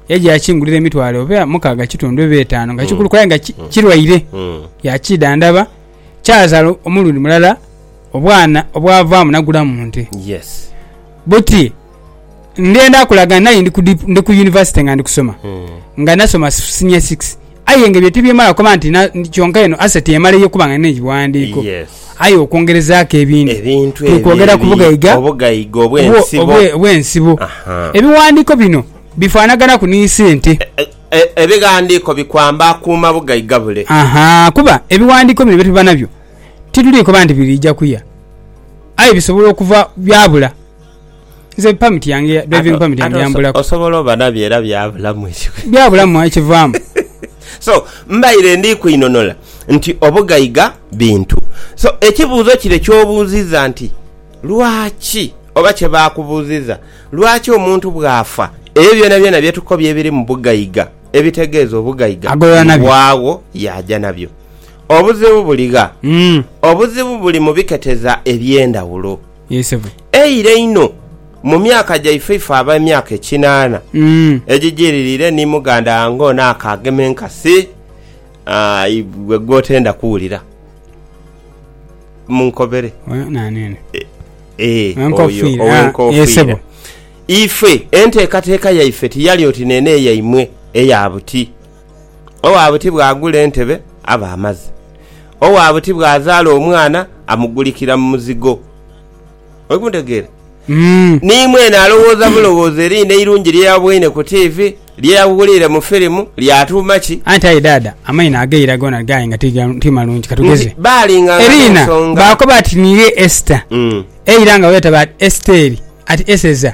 Yaidha yaakingulira emitwalo oba mukaaga kitundu oba etaanu nga kikulu kulabe nga ki- kirwaire. Yaakiidhandhaba, kyazaala omulundi mulala obwana obwavaamu nagulamu nte. Yes. Buti ndhenda kulaga nai ndi ku dip- ndi ku yunivasite nga ndi kusoma nga nasoma senior six Aye nga ebyo tibyemala kuba nti na, kyonka eno aseti emala eyo kubanga nene ebiwandiiko. Yes. Aye okwongerezaaku ebindi, Ebintu tuli ebyo kwogera ku ebi- bugaiga obugaiga obwe- obw'ensibo. obwe- obw'ensibo. Aha. Ebiwandiiko bino bifaanaganaku ni sente. E- e- Ebighandiiko bikwamba akuuma bugaiga bule. Aha, kuba ebiwandiiko bino bye tuba nabyo tituli koba nti biriija kuya, aye bisobola okuva byabula. Nze permit yange ya- driving permit yange yambulaku. osobola oba nabyo era byabulamu ekiwe Byabulamu ekivaamu. so mbaire ndi kwinonora nti obugaiga bintu so ekibuuzo kire kyobuuziza nti lwaki oba kyebakubuuziza lwaki omuntu bwafa ebyo byonabyona byetukobye ebiri mu bugaiga ebitegeeza obugaiga Agolola nabyo. bwawo yaja nabyo obuzibu buligha Mm. obuzibu buli mu biketeza ebyendawulo Yee sebo. Eira einho, mu myaka gyaife ife ab'emyaka ekinaana egijiririre ni muganda wange ono akaagema enkasi aah, gw'otenda kuwulira, munkobere. Oyo naani ono? Eeh, oyo Ow'enkoofiira. Ah, yee ow'enkoofiira. sebo. Ife enteekateeka yaife tiyali oti neene yaimwe eya buti. Owa buti bw'agula entebe aba amaze. Owa buti bw'azaala omwana amugulikira mu muzigo. Oli kuntegeera? Ni mwene alowooza bulowooza eriina eirungi lye yaboine ku tiivi, lye yawuliire mu firimu, lyatuuma ki? Anti aye Dhaadha, amaino ageira goona gaaye nga ti ga, ti malungi. Ka tugeze. Nti baalinganga Eriina, n'ensonga. baakoba ati, Niiwe Esita. Eira nga bweyetaba ati Esiteeri, ati Eseza.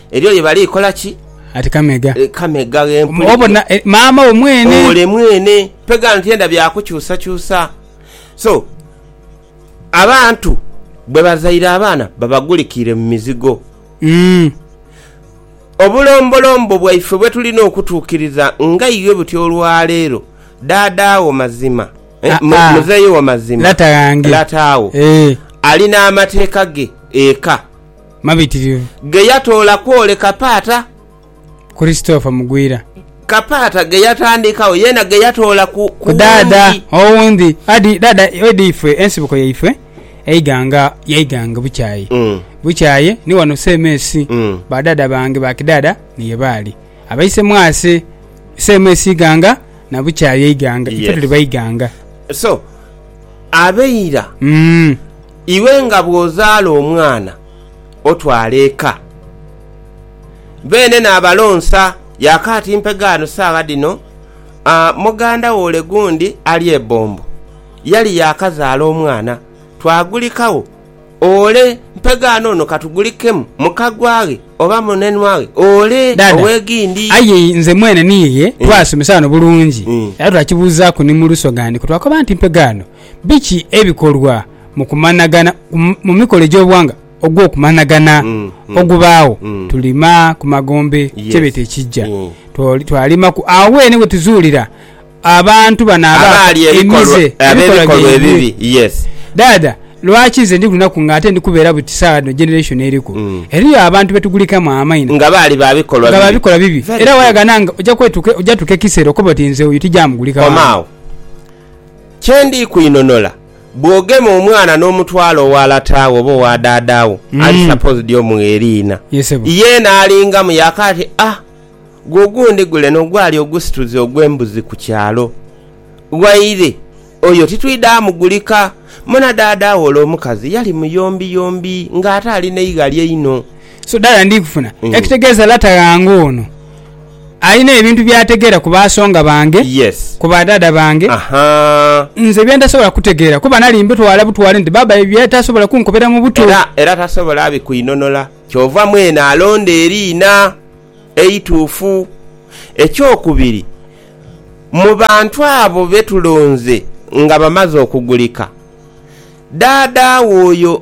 Eriyo lye bali kola ki? Ati kamegha. E, kamegha ghempulira. Obona e, maama wo mwene. Ole mwene. Pega nti enda bya kukyusa kyusa. So abantu bwe bazaire abaana babagulikiire mu mizigo. Mm. Obulombolombo bwaife bwe tulina okutuukiriza nga iwe buti olwaleero daadaawo mazima eh, ah, ah. muzeeyi wo mazima lataawo eh. alina amateeka ge eka mabitirivu. Ge yatoola kwoleka Paata. Christopher Mugwira. Ka Paata ge yatandikawo yeena ge yatoola ku Daada owundi. Daada edi ife ensibuko yaifwe eighanga yaighanga bukyaye bukyaye ni wano CMS. Ba daada bange ba kidaada ni ye baali abaise mwase CMS ighanga na bukyaye eighanga. Ife tuli baighanga. So abeira. Iwe nga bw'ozaala omwana otwala eka, beene naabalonsa. Ya kaati mpe ghano saagha dhino, muganda wo ole gundi ali e Bombo yali yaakazaala omwana, twagulikagho. Ole mpe ghano ono ka tugulikemu muka gwaghe oba munenwaghe ole ow'eghindi. Aye nze mwene niiye twaasomesa ghano bulungi era twakibuuzaaku ni mu Lusogha ndi kwe twakoba nti mpe ghano Biki ebikolwa mu kumanhagana mu mikolo egy'obughanga ogw'okumanhagana ogubaagho? Tulima ku magombe kyebeeta ekijja. Twalimaku agho weene we tuzuulira abantu bano abaali emize, ebikolwa byaibwe. Dhaadha, lwaki nze ndi ku lunaku nga ate ndi kubeera buti saagha dhino generation eriku? Eriyo abantu be tugulikamu amaino nga baali ba bikolwa bibi era wayaganha nga oja tuuka ekiseera okobe oti nze oyo tija mugulika wange. Kye ndi kwinhonola, bw'ogema omwana n'omutwala owa lata wo oba owa dhaadha wo, ali supposed omugha eriina. Yeena alingamu yaaka ati, Ah, gwe ogundi guleno ogwali ogusituzi ogw'embuzi ku kyalo waire, oyo titwidha mugulika. Munadhaadha wo ole omukazi yali muyombiyombi ng'ate ali n'eighali einho. So dhaadha ndi kufuna ekitegeeza lata ghange ono. Alina ebintu by'ategeera ku baasonga bange, Yes. ku badhaadha bange, Ahaa. nze bye ntasobola kutegeera kuba nali mbitwala butwale nti baaba ebyo yali tasobola kunkobera mu buto. Era, era tasobola abikuinonola. Kyova mwene alonda eriina eituufu. Ekyokubiri, mu bantu abo be tulonze nga bamaze okugulika, dhaadha wo oyo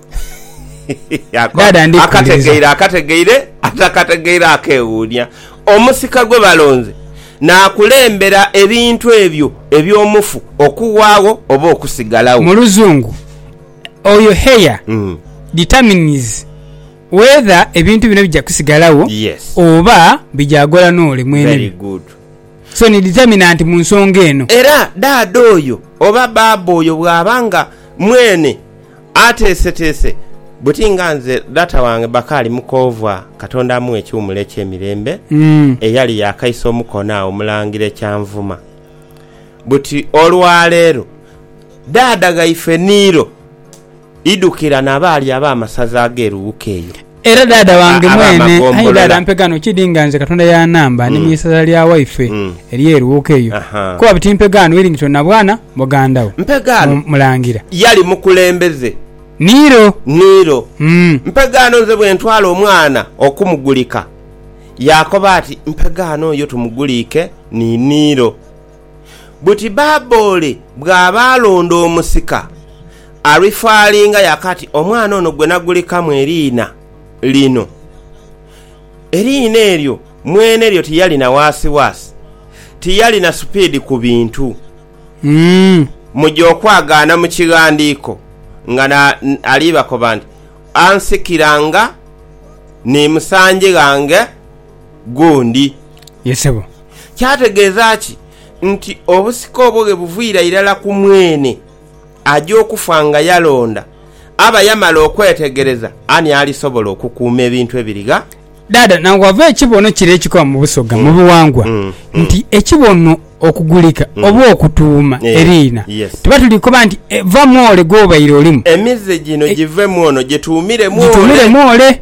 Akategeire akategeire, atakategeire akeewuunia. Omusika gwe balonze naakulembera ebintu ebyo eby'omufu okuwaagho oba okusigalagho. Mu Luzungu, oyo heir determines whether ebintu bino bija kusigalagho oba bija ghola n'ole mwenebyo. So ni determinant mu nsonga eno. Era daada oyo oba baaba oyo bw'aba nga mwene. Ateeseteese buti nga nze data wange Bakali Mukoovwa, Katonda amughe ekiwumulo eky'emirembe, eyali yaakaisa omukono agho Mulangira Ekyanvuma. Buti olwaleero daada ghaife Niiro idhukira na baali ab'amasaza ag'e Luwuka eyo. Era dhaadha wange mwene, aye dhaadha mpe gano, kidi nga nze Katonda ya namba ni mu isaza lya waife eri e Luuka eyo, kuba buti mpe gano Willington na bwana muganda wo Mulangira. Yali mukulembeze. Niiro. Niiro. Mpe gano nze bwe ntwala omwana okumugulika. Yaakoba ati, Mpe gano yo tumuguliike ni Niiro. buti Baabole bw'aba alonda omusika, alifaalinga yaakati omwana ono gwe nagulekamu eriina lino. Eriina eryo mwene lyo tiyalina waasiwaasi, tiyalina supiidi ku bintu. Muja okwagaana mu kighandiiko nga alibakoba nti, Ansikira nga ni musangi ghange gundi. Kyategeeza ki nti obusika obwo ghe buviira irala ku mwene aja okufa nga yalonda? Aba yamala okwetegereza ani alisobola okukuuma ebintu ebirigha? Dhaadha na ghava ekibono kire ekikoba mu Busoga mu biwangwa nti ekibono okugulika oba okutuuma eriina. Tuba tuli kukoba nti va mu ole gw'obaire olimu. Emize gino givemu ono, gituumire mu ole.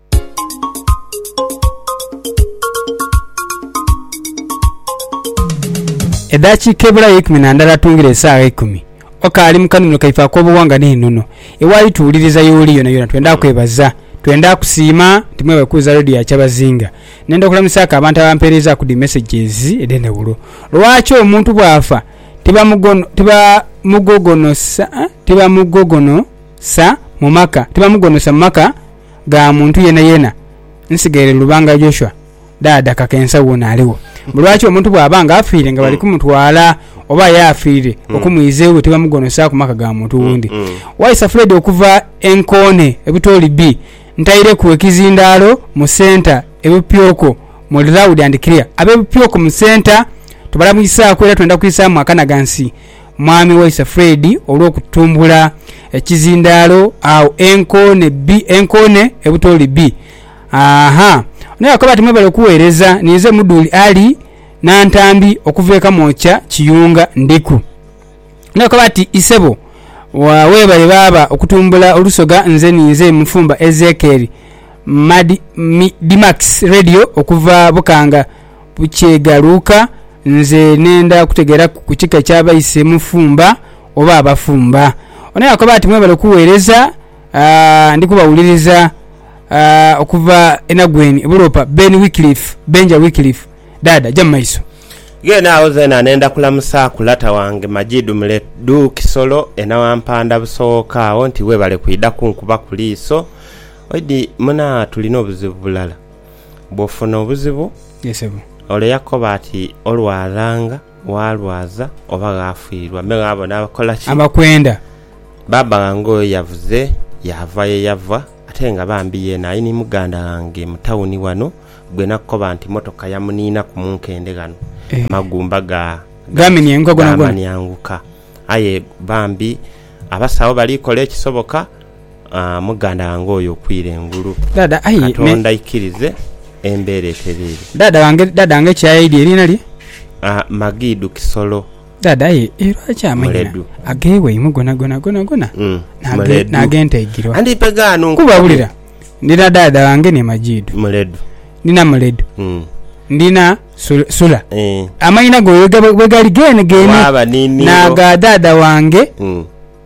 Edhakiika ebulayo eikumi na ndala atungire esaagha eikumi, okaali mu kanhumiro kaife ak'obughanga n'enono. Ewaali tuwuliriza y'oli yonayona twendha kwebaza. Twendha kusiima nti mwebale kuwuliza Radio ya Kyabazinga. Nenda okulamusaaku abantu abampeerezaaku dhi messages edh'endhaghulo. Lwaki omuntu bw'afa tibamugogonosa mu maka? gha muntu yenayena nsigaire Lubanga Joshua dhaadha kaka ensa wona aligho mbu lwaki omuntu bwaba nga afiire nga bali kumutwala oba aye afiire okumwiza ewe tibamugonosaku maka ga muntu wundi waisa Fred okuva enkoone ebutoli bi ntaireku ekizindalo mu centre ebupyoko muli loud and clear abebupyoko mu centre tubalamwisaku era twenda kwisamu akanagansi. Mwami waise Fred olw'okutumbula ekizindaalo agho e Nkoone bi, e Nkoone e Butooli bi. Aahaa. Ono yakoba ati Mwebale okuweereza, ninze Mudhuli Ali Nantambi okuva e Kamwokya Kiyunga ndiku. Ono yakoba ati Isebo weebale baaba okutumbula olusoga nze ninze Mufumba Ezekiel Mad, mi, Dimax Radio okuva Bukanga. bukyegaluuka nze nenda kutegeraku ku kika kya baise mufumba oba abafumba. Ono yakoba ati mwebale kuwereza aah ndi kubawuliriza aah okuva enagweni ebulopa Ben Wycliff Benja Wycliff Dada ja mumaiso. Ghene agho zena nenda kulamusaku lata wange Majid Mule du Kisolo enawampanda busoghoka agho nti webale kwidha kunkubaku liiso. Oidi muna tulina obuzibu bulala. bw'ofuna obuzibu? Ye sebo. Ole yakoba ati, Olwalanga, ghalwaza, oba ghaafiirwa, me ghabona abakola ki? Abakwenda. Baaba ghange oyo yavuze yaava ye yava, ate nga bambi yeena ali ni muganda ghange mu tawuni ghano gwe nakoba nti mmotoka yamuniinaku mu nkende ghano, amagumba ga, ga, gaamanianguka. Aye bambi abasawo bali kola ekisoboka. Muganda wange oyo okwire engulu. Katonda aikirize embeera etereere. Dhaadha wange ki aye eidhi eriina lye? Magidu Kisolo. Dhaadha aye lwaki amanhina agewaimwe gonagona gonagona n'age Ntaigirwa? Kuba wulira, ndina dhaadha wange ni Magidu. Ndina Muledu. Ndina Sula. Amanhina go bwegali geene geene n'aga dhaadha wange.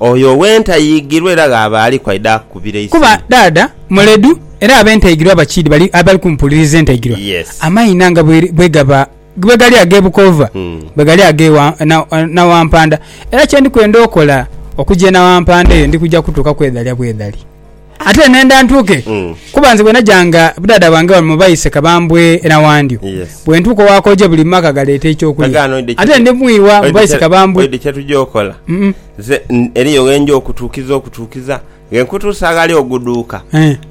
Oyo ow'entayighirwa era gh'aba aliku aidha akubira eisimu. Kuba dhaadha muledhu era ab'entayighirwa abakiidhi bali abali kumupuuliriza entayighirwa. Amaina nga bwegaba bwegali ag'e Bukoova, bwegali ag'e Nawampanda. Era kye ndi kwenda okola, okuja e Nawampanda eyo ndi kuja kutuuka kwedhalya bwedhali. Ate nenda ntuuke, kuba nze bwe najanga budaada bwange wano mu baise Kabambwe e Nawandyo, bwe ntuuka owakooja buli mu maka galeeta eky'okulya. Ate ndi mu iwa mu baise Kabambwe. Oidhi kye tugya okola? Nze eriyo ghe nja okutuukiza okutuukiza ghe nkutuusa aghali oguduuka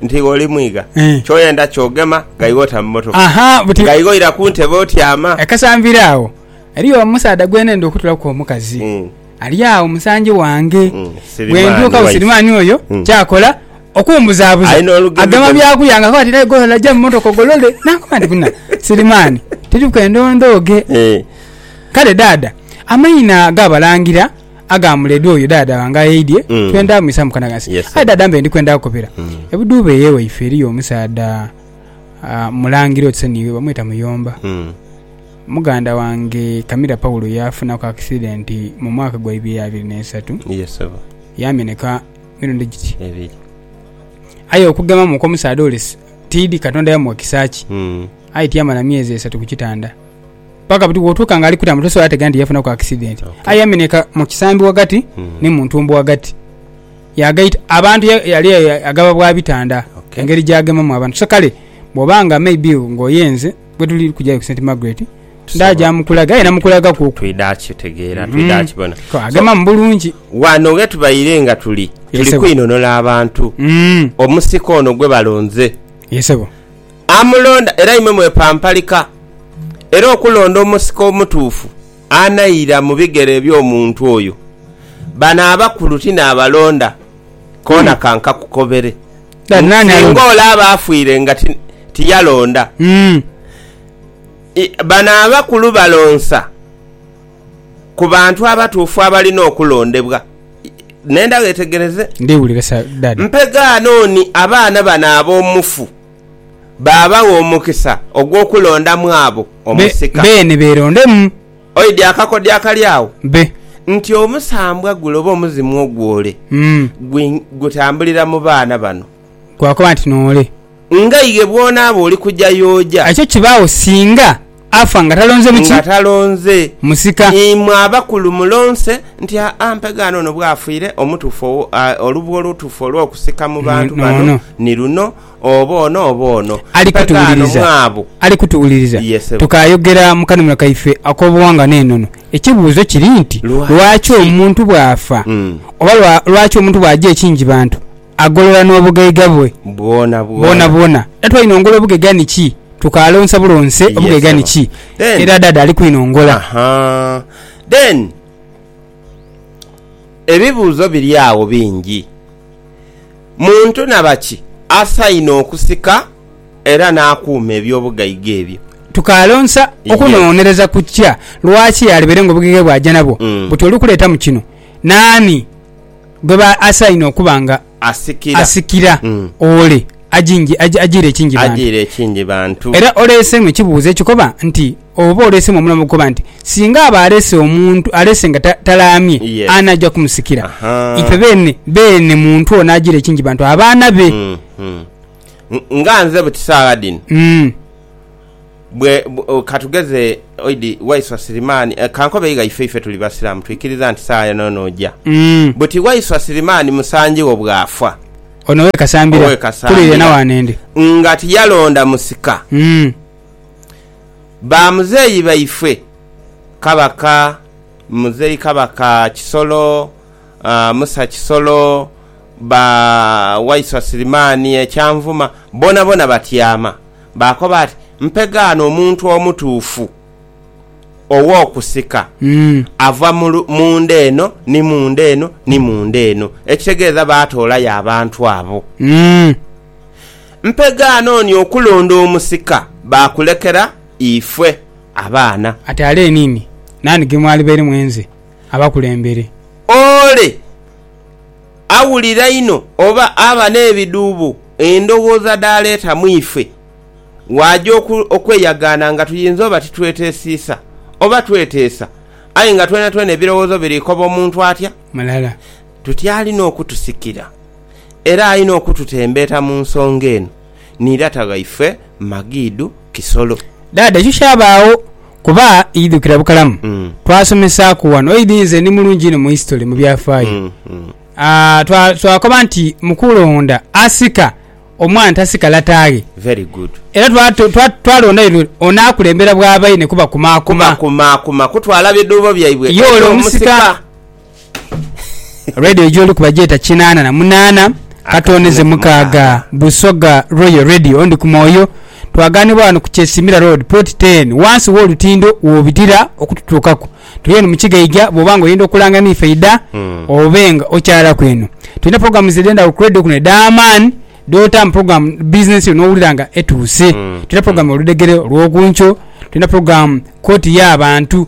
nti iwe oli mwiga. Ky'oyenda ky'ogema nga iwe ota mu mmotoka, nga iwe oira ku ntebe otyama. Kasanvire agho, eriyo omusaadha gwe nenda okutulaku omukazi. ali agho musanji wange bwentuuka busirimaani oyo hmm. kyakola okumbuzaabuza agema byakulya nga akoba tirayi golola ja mumotoka ogolole nakoba nti buna sirimaani tiri kwenda ondooge eh. kale daada amaina gabalangira agamuledi oyo dada wange ayeidye hmm. twenda mwisa mukanagasi aye dada mbe ndikwenda kukopera hmm. ebuduuba eyewaife eriyo omusaadha ah, mulangira otiseniwe bamweta muyomba Muganda wange Camila Paulo yaafunaku akisidenti mu mwaka gwa ibiri abiri n'eisatu. Yaameneka mirundi giti ebiri. Aye okugemamu kw'omusaadha ole tiidhi Katonda yamuwa kisa ki. Hmm. Aye tiyamala myezi esatu ku kitanda. Paka buti bw'otuuka ng'ali kutaama tosobola ategeera nti yafunaku akisidenti. Aye yaameneka mu kisambi ghagati hmm. ni mu ntumbo ghagati. Yaagaita abantu yali agaba bwa bitanda engeri gy'agemamu abantu. So kale bw'oba nga maybe ng'oyenze. bwetuli kujayo ku St Margaret ndaja mukulaga aye namukulaga ku twidha kitegeera mm. twidha kibona ko agema so, mubulungi wano nga tubaire nga tuli tuli kwinonola abantu mm. omusika ono gwe balonze yesebo amulonda era imwe mwepampalika era okulonda omusika omutuufu anaira mu bigere eby'omuntu oyo bano abakulu tinaabalonda koona mm. kankakukobere Kale nani Singa alonda? olaba afwire nga ti- tiyalonda, Mm. i- bano abakulu balonsa ku bantu abatuufu abalina okulondebwa. I- Nenda wetegereze. Ndiwulira sa dad. Mpegaano oni abaana bano ab'omufu baabawa omukisa ogw'okulondamu abo Be- omusika. Beene beerondemu. Oidhi akakodyo akali agho Be. nti omusambwa gule oba omuzimu ogwo ole Mm. gwi gutambulira mu baana bano. Gwakoba nti noole. Nga ighe bw'onaaba oli kuja yooja. Ekyo kibaagho singa afa nga talonze buki? Nga talonze. Musika. Imwe abakulu mulonse nti aa mpegaano ono bw'afiire, omutuufu owo, aa, olubwa olutuufu olw'okusika mu bantu bano N'ono. ni luno, Oba ono oba ono. Ali kutuwuliriza. Ali kutuwuliriza. Tukaayogera mu kanunula kaife ak'obuwangwa n'enono. Ekibuuzo kiri nti, Lwaki omuntu bw'afa, oba lwaki omuntu bw'aja ekingibantu, agolola n'obugaiga bwe bwonabwona? Dada twinongola obugaiga niki? Tukaalonsa bulonse obugaiga niki? Era Dada ali kwinongola. Then, ebibuuzo biri agho bingi. Muntu na baki asainhe okusika era n'akuuma eby'obugaiga ebyo? Tukalonsa okunongonereza ku kya lwaki alibeire ng'obugaiga bw'aja nabwo buti oli kuleetamu kino. Naani gweba asainhe okuba nga asikira? Ole ajiire ekingi bantu. Era oleeseemu ekibuuzo ekikoba nti. Oba oleesemu omulamu okukoba nti, Singa aba alese omuntu alese nga talaamye, ani aja kumusikira? Ife beene beene muntu ono ajiire kingi bantu abaana be. Nga nze buti saagha dhino, bwe, ka tugeze oidi Waiswa Sirimaani, ka nkobe igha ife, ife tuli Basiraamu, twikiriza nti saagha yoona yoona oja. Buti Waiswa Sirimaani musangi wo bw'afa, ono ow'e Kasambira, kuliire na waanende, nga tiyalonda musika. Ba muzeeyi baifwe Kabaka Muzeeyi Kabaka Kisolo, Musa Kisolo, ba Waiswa Sirimaani e Kyanvuma bonabona batyama. Baakoba ati, Mpegaano omuntu omutuufu ow'okusika ava mu nda eno ni mu nda eno ni mu nda eno. Ekitegeeza baatoolayo abantu abo. Mpe gaana oni okulonda omusika baakulekera ife abaana. Ate ale enini naani ge mwalibaire mwenze abakulembere? Ole awulira inho oba aba n'ebidhuubo endowooza dhaaleeta mu ife, waaja okweyagaana nga tuyinza oba titweteesiisa oba tweteesa, aye nga twenatwena ebirowoozo biri koba omuntu atya mulala. Tutyalina okutusikira. era aina okututembeeta mu nsonga eno ni lata waife Magidu Kisolo. Dhaadha ekyo kyabaagho kuba idhukira bukalamu twasomesaaku wano idi nze ndi mulungi inho mu history, mu byafaayo, twakoba nti mukulonda asika omwana tasika lataaghe era twalonda yule onaakulembera bwa baine kubakumaakuma. Kubakumaakuma kutwala bidhuubo byaibwe eri omusika. Radio gyoliku bagyeta kinaana na munaana katono ze mukaaga Busoga Royal Radio ndi ku mwoyo twaganibwa wano ku Kyesimira Road plot 10 wansi wolutindo wobitira okututuukaku tuli eno mukigaija bwoba nga oyenda okulanga niife idha hmm. obe nga okyalaku eno tulina programs edendagho ku radio kuno edhamaani dota mu program business yo nowulira nga etuuse hmm. tulina program hmm. oludegere olwokunkyo tulina program kooti y'abantu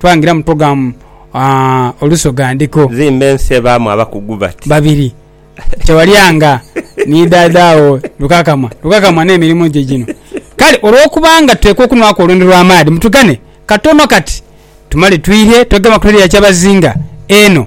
Twangira mu togamu aah olusoga ndiko. Nzimba ensi ebaamu abakugu bati. Babiri. Kyewalyanga ni dhaadha wo Lukakamwa. Lukakamwa n'emirimu gye gino. Kale olw'okubanga tuteekwa okunwaku olwendo lw'amaadhi, mutugane katono kati tumale twirye twegema ku redio ya Kyabazinga eno.